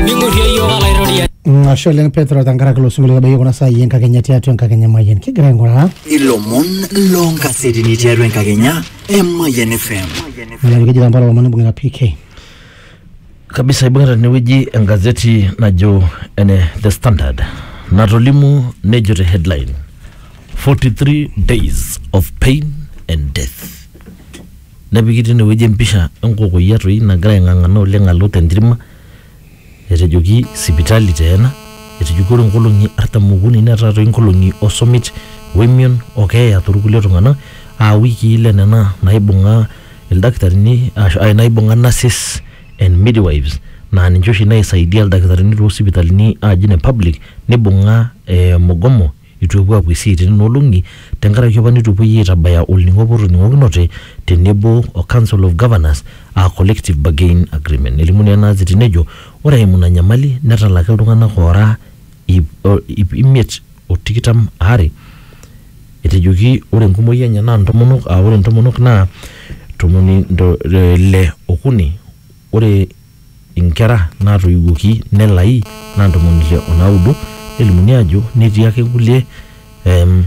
ning'urrie iyiook alaitoriani Ashe oleng Petro tenkaraki ilo sinkolio otabayie kuna saai enkakenya tiatua enkakenya emayian kigira aing'uraa ilomon loonkasetini tiatua enkakenya emayian fm nalaki keji tampala lomon ibung'ita PK kabisa ibung'ita tenewueji engazeti najo ene the standard natolimu nejo te headline 43 days of pain and death Nepiki teine wueji empisha e nkokoyia toi nagira aing'ang'ana oleng alo te ntirma. Etejoki sipitali taa ena, etejoki ore nkolong'i artam okuni netaa toi nkolong'i o summit o emion o keeya too lkulie tung'ana aa wikii ile nena naaibung'a ildakitarini aashu naaibung'a nurses and midwives naa ninche oshi naisaidia ildakitarini too sipitalini aaji ine public neibung'a ee mugomo. Eitu epuo apuo esiai te nena olong'i tenkaraki apa neitu epuoi aitabaya olning'o apa otoning'okinote te nebo o Council of Governors aa Collective Bargain Agreement. Nelimu naa ena aziti nejo ore eimu ina nyamali netalaki iltung'ana oora iip imiet o tikitam aare etejoki ore enkumoi enye naa ntomonok aa ore ntomonok naa ntomoni ile okuni ore inkera naatoiwuoki nelai naa ntomoni ile o naudo nelimuni aajo netii ake kulie em,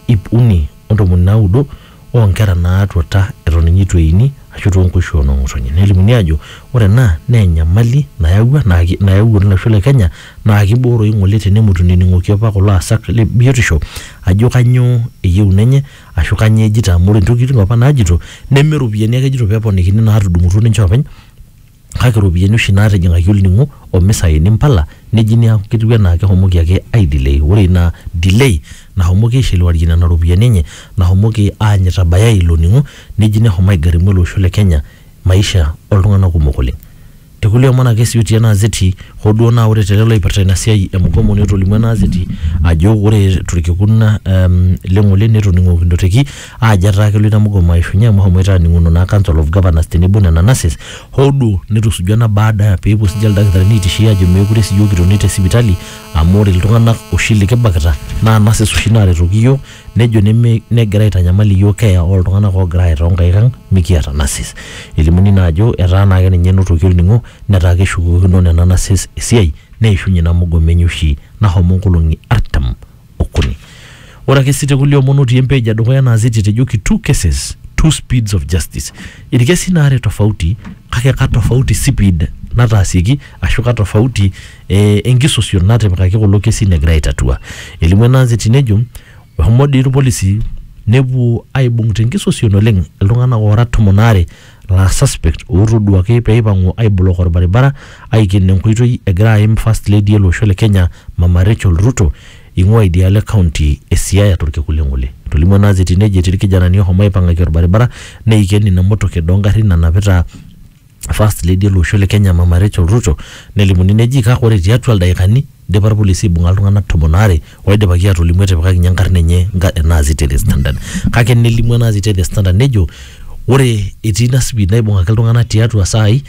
ip uni o ntomoni naudo oo nkera naatuata eton ninye eitu eini ashu too nkoishu oo noo ng'otonye. Nelimuni aajo ore ena naa enyamali nayawua naa ki- nayawuaki atua olosho le Kenya naa kibooroyu ng'ole tenemut enening'oki apa kulo aasak le biotisho ajo kanyoo eyieuna enye. Ashu kanyoo ejito amu ore ntokitin opa naajito neme ropiyiani ake ejito peponikini naatudung'utuo ninche oopeny kake ropiyiani oshi naatijing'aki olning'o o misaini mpala neji niaku ketiu enaa kehomoki ake aidelay. Ore ina delay nahomoki aishiliwarie nena ropiyiani enye nahomoki aany itabayai ilo ning'o neji neshomo aigarimu ele osho le Kenya. maisha oltung'anak kumok oleng. Te kulie omon ake sii otii ena azeti hoo duo naa ore te lelo oipirta ina siai e mugomo netolimuo ena azeti ajo ore torkekun le ng'ole netoning'okinote teki aajo etaa kelo ina mugomo aishunye amu eshomoita aaning'uno naa council of governors tenebo nena nurses hoo duo netusuja ena baada peepuo siininche ildakitarini aitishia aajo meekure sii iyiook kitoni te sipitali amu ore iltung'anak oshi likibakita naa nurses oshi naaretoki iyiook nejo neme negira aitanyamal iyiook keeya ooltung'anak oogira aye toonkaik ang mikiata nurses. Elimuni naa ajo etaa naa ake ninye enotoki olning'o netaa keshukokino nena nurses esiai neishunye ina mugomo enye oshi nahomo nkolong'i artam okuni. Ore ake sii te kulie omon otii empage edukuya ena azeti etejoki two cases, two speeds of justice. Ilkesin aare tofauti kake katofauti sipid nataasieki ashu katofauti eh, enkisosion natipikaki kulo kesin egira aitatua. Elimu ena anzeti nejo eshomo dii irpolisi nepuo aibung tenkisosion oleng iltung'anak oora tomon aare laa suspect ootoduaki peipang'u aiblok orbaribara aiken enkoitoi egira aim first lady ele osho le Kenya Mama Rachel Ruto eing'ua idialo e county e Siaya torkekun le Ng'ole. Etolimuo ena anzeti nejo etii irkijanani ohomo aipang'aki orbaribara neiken ina motoket oongarrin nanapita First Lady ele osho le Kenya Mama Rachel Ruto nelimuni neji kake ore tiatua ildaikani idipa irpolisi aibung'a iltung'anak tomon aare oidipaki aatolimu etipikaki ninye enkarna enye nga- ena aziti e The Standard. Kake nelimu ena aziti e The Standard nejo ore etii ina speed naibung'aki iltung'anak tiatua isaai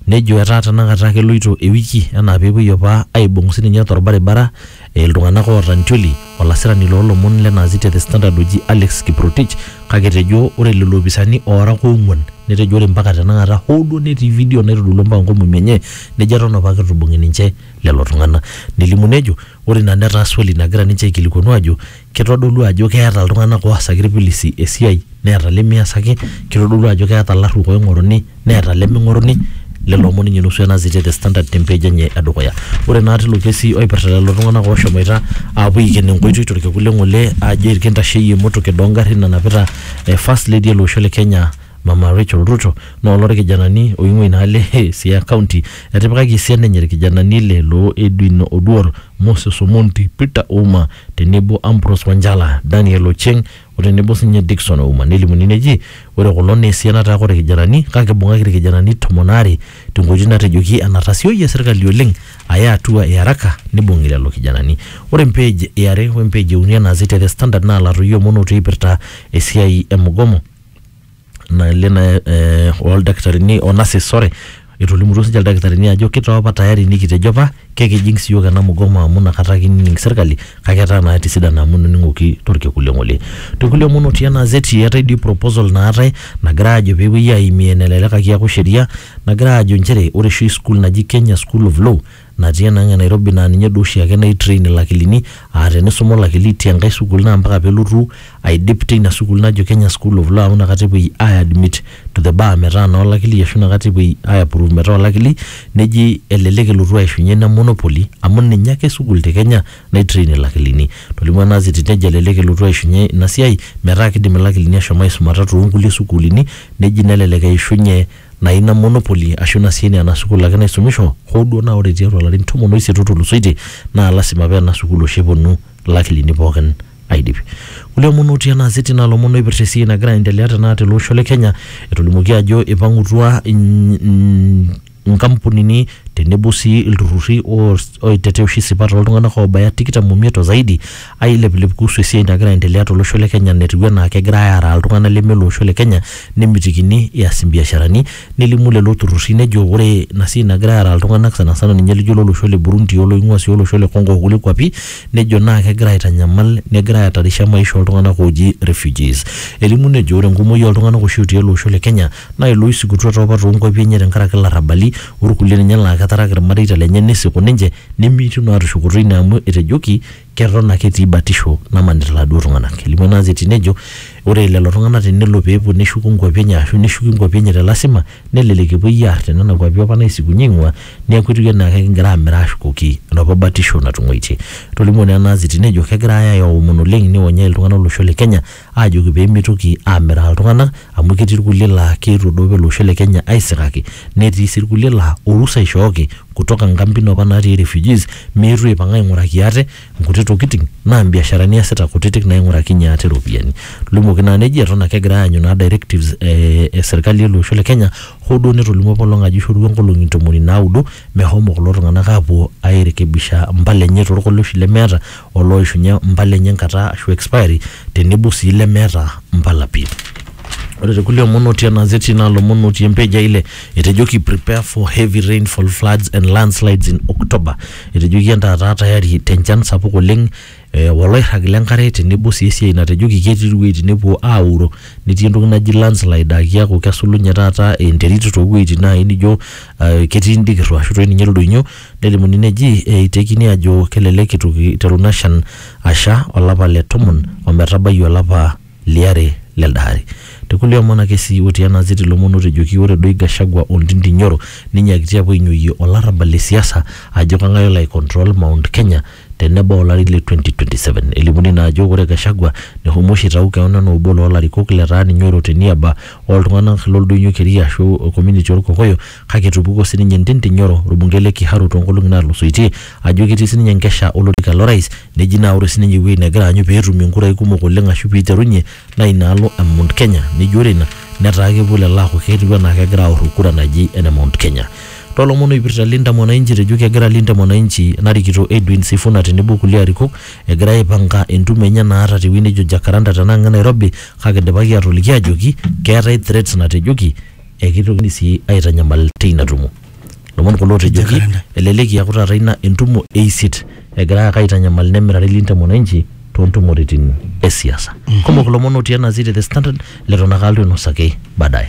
nejo etaa tenakata keloito ewiki enaa peepuoi opa aibung' sininye torbaribara iltung'anak oota intioli olasirani loolomon lena aziti e The Standard oji Alex Kiprotich kake etejo ore lelo opisani oora oong'uan netejo ore mpaka tenakata hoo duo netii video naitodolua mpaka nkomomi enye nejo eton apake eitu ibung'i ninche lelo tung'ana. Nelimu nejo ore ina netaa swali nagira ninche aikilikuanu aajo kitodolu ajo keeta iltung'ana oasaki ilpilisi esiai neeta lemeasaki, kitodolu ajo keeta ilarruok oing'oruni. neeta leming'oruni lelo omon ninye nusu enazitie the standard te page enye edukuya. Ore naa tilo kesi oipirta lelo tung'anak oshomoita aapuo aiken enkoitoi torkekun le ng'ole aajo irkintasheyie emotoket oo ngarrin nanapita eh first lady ele osho le Kenya mama Recheal Ruto naa oloo irkijanani oing'ua ina alo eh Siaya county. Etipikaki esiana enye irkijanani ile loo Edwin Oduor, Moses Omondi, Peter Ouma tenebo Ambrose Wanjala, Daniel Ocheng o tenebo sinye Dickson Ouma nelimuni neji ore kulo naa esian nataa kore kijanani kake ibung'aki ilkijanani tomon aare tenkoitoi natejoki enatasioyie serkali oleng aya atua e araka nibung'i lelo kijanani. Ore empej e are we mpej e uni enaasi te The Standard naa latoyio omon otii eipirta esiai e mugomo. nale na eh, oldakitarini o nurses sorry etolimutuo sinche ildakitarini ajo kitaa apa tayari nikitejo apa kekijing siyiok ena mugomo amu nakata kining serkali kake etaa naa etisidana amu ening'oki torkekun le ng'ole tekulie omon otii ena azeti eetae dii proposal naatae nagira ajo peepuoi aimie nelelek ake eaku sheria nagira ajo inchere ore oshi school naji kenya school of law natii enang' e Nairobi naa ninye duo oshiake naitrain ilakilini aa tenisuma olakili te nkae sukuul naa mpaka pelotu aidip teina sukuul najo Kenya School of Law amu inakata epuoi aiadmit to the bar metaa naa olakili ashu inakata epuoi aiaprove metaa olakili neji elelek elotu aishunye ina monopoly amu ninye ake sukuul te Kenya naitrain ilakilini. Etolimuo ena kiti nejo elelek elotu aishunye ina siai metaa kidim ilakilini ashom aisumata too nkulie sukuulini neji nelelek eishunye naa ina monopoly ashu ina sii naa ena sukuul ake naisumisho hoo duo naa ore tiatua ilarin tomon oisiet otulusoitie naa lasima paa ena sukuul oshi eponu ilakilini pookin aidip. Kulie omon otii ena azeti naa ilomon oipirta esiai nagira aendelea tenakata tele osho le Kenya etolimuoki ajo ipang'utua inkampunini tenebo sii ilturruri oos, oitetea oshi isipat oltung'anak oobaya tikitam omiet o zaidi aileplep kuhusu esiai nagira aendelea tolosho le Kenya netiu enaa kegirai aaraa iltung'anak leme loosho le Kenya nemitikini eas imbiasharani nelimu lelo turrurri nejo ore ina siai nagirai aaraa iltung'anak sana sana ninye lijo lolosho le Burundi oloing'ua sii olosho le Congo okulie kuapi nejo naa kegira aitanyamal negira aatarisha maisha oltung'anak ooji refugees. Elimu nejo ore enkumoi oltung'anak oshi otii ele osho le Kenya naa ilooisikutua toopa toonkuapi enye tenkaraki ilarrabali orkulie ninye laa ketaraka irmareita lenye nisiku ninche nemeitu naa tushukoto ine amu etejoki keton ake etii batisho namanita iladuo tung'ana. Elimu ena gazeti nejo ore lelo tung'ana tenelo pee epuo neshuku nkuapi enye aashu neshuki nkuapi enye te lasima nelelek epuoi aar te nena kuapi opa naisikunye eing'ua neaku etiu enaa kekigira aamir aashukoki enopa batisho natung'uaitie. Etolimuo naa ena gazeti nejo kegirai aomon oleng neionyai iltung'ana olosho le Kenya aajoki pee meitoki aamiraa iltung'anak amu ketii irkulie laa keitodou ele osho le Kenya aisikaki netii sii irkulie laa orusa eishooki kutoka nkampin opa naatii refugees meetu aipang aing'uraki ate nkuti tokitin naa mbiasharani eesita kutitik naaing'urakinyie ate iropiyiani. Limuoki naa neji eton ake egirai aanyu naa directives e serkali ele osho le Kenya hoo duo netolimuo apa olong ajo eishorutua nkolong'i ntomoni naudo mehomo kulo tung'anak aapuo airekebisha impala enye torkoleoshi lemeeta o looishunye mpala enye enkata ashu expiry tenebo sii lemeeta mpala pi. Ore te kulie omon otii ena azeti naa lomon otii empage e ile etejoki prepare for heavy rainfall, floods and landslides in October. Etejoki entaa taa tayari te nchan sapuk oleng o loirrag le nkare tenebo sii esiai natejoki ketii iwuejitin nepuo aauro netii entoki naji landslide aa kiaku kesulunye taata enterit too wueitin naaji nijo ketii indikirro ashu toi ninye ildoinyio Nelimuni neji eitekini ajo kelelek eitu eiteru ina shan asha olapa le tomon ometabai olapa liare lelde ari. Te kulie omon ake sii otii ena azeti lomon otejoki ore doi Gachagua o Ndindi Nyoro neinyiakitia apuo ainyoyie olarrabal le siasa ajo kang'ae olo aicontrol Mount Kenya tenebau olari le 2027. Elimuni naa ajo ore Gachagua nehomo oshi aitau keon anaa obo loo larikok letaa ninye oiro te niaba oo ltung'anak lo Ldoinyo Keria aashu Community oo Lkokoyo kake etupukuo sii ninye Ntindi Nyoro olbungei le Kiharu too nkolong'i naatulusoitie ajo ketii sii ninye enkesha o lorika lo rais neji naa ore sii ninye ewueji negira aanyu pee etumie nkurai kumok oleng aashu pee eiterunye naa ina alo e Mount Kenya neji ore ina netaa kepuo lelo aaku ketiu anaa kegira aoro kura naji ene Mount Kenya. Tolomon oipirta Linda Mwananchi etejo kegira Linda Mwananchi narikito Edwin Sifuna tenebo kulie arikok egira aipanga entumo enye naata tewueji nejo Jacaranda tenang e Nairobi kake idipaki atoliki ajoki keetae threats natejoki ekitokini sii aitanyamal teina tumo. Lomon kulo otejoki Jacaranda. elelek eaku taata ina entumo e isiet egirai ake aitanyamal nemirare Linda Mwananchi toontumoritin e siasa. Kumok ilomon otii ena gazeti e The Standard leton ake alotu ainosaki baadaye.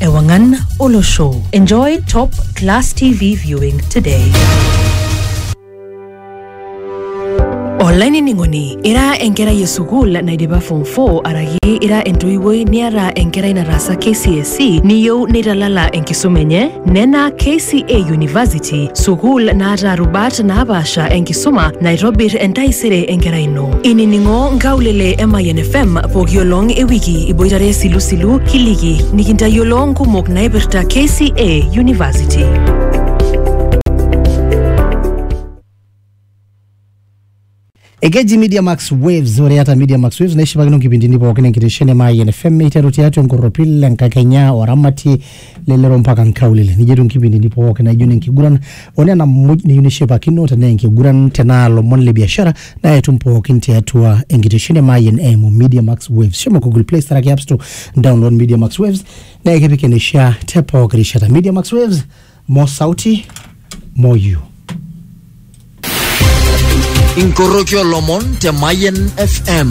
Ewangan Olosho. Enjoy top class TV viewing today. olainining'oni ira enkerai e sukuul naidipa form 4 araki ira entoiwuoi niata enkerai nataasa kcse niyieu neitalala enkisuma enye nena kca university sukuul naata rubat naapaasha enkisuma naitobir entaisere enkerai ino Inining'o nkaulele e Mayian FM pooki olong e wiki iboitare Silusilu Kiliki nikintayiolo nkumok naipirta KCA University. Ekeji Media Max Waves, ore ata Media Max Waves naishipakino nkipindini pookin enkitesheni e Mayian FM eiteru tiatua enkorropil enkakenya oramatie lelero mpaka nkaulele nijo etiu nkipindini pooki naijo ne nkiguran o nena muj niyieu nishipakino tenaa enkiguran tenaa lomon le biashara naa etum pookin tiatua enkitesheni e Mayian eimu Media Max Waves shomo Google Play Store ake App Store download Media Max Waves naa ekipik eneishaa te pooki rishata Media Max Waves more sauti more you inkoroki olomon te Mayen FM.